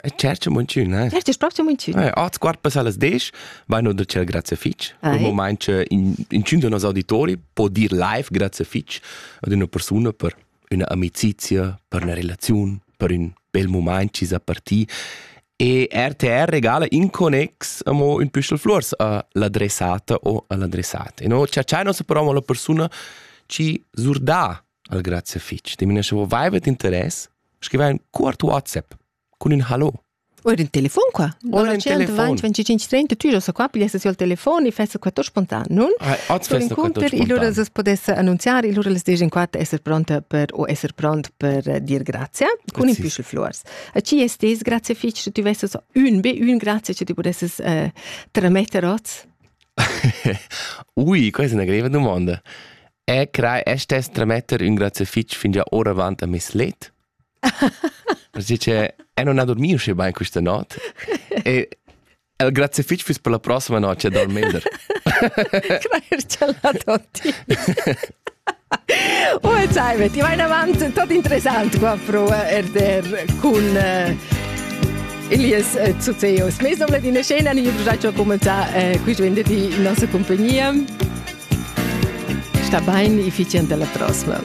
E certo muncina. Certo, proprio muncina. Eh, art quart pass alles desch, vai no da cel grazie fitch. Un moment che in in cin de nos auditori può dir live grazie fitch ad una persona per una amicizia, per una relazione, per un bel moment ci sa parti. E RTR regala in connex amo un püschel flors a l'adressata o all'adressata. E no, c'è c'è nostra parola la persona ci zurda al grazie fitg de mineschavo vaivet interess scriva in cuort whatsapp cun in hallo Ora in telefon qua. Ora in telefon. 25 30 tu so qua piglia se al telefon e fessa qua to spontan, non? Ah, oz fessa qua to spontan. Ilura se podesse annunziare, ilura les dejen qua esser pronta per o esser pront per eh, dir grazie con in pischel flores. A ci estes grazie fitch se tu vesses un be un grazie che ti podesses eh, trametter oz. Ui, questa è una greve domanda. E crai e stess tremetter ün grazie fitg fin già oravant a mes let. Perché che e non ha dormi usce bain questa not. E el grazie fitg füss per la prossima notte a dormender. Crai ce la toti. Oh, e salve, ti vai avanti, tutto interessante qua pro RTR con eh, Elias eh, Zuzeos. Mais doble din scena, niño progetto a cominciare eh, qui venerdì in nostra compagnia. Sta bain, i fich dalla prossma.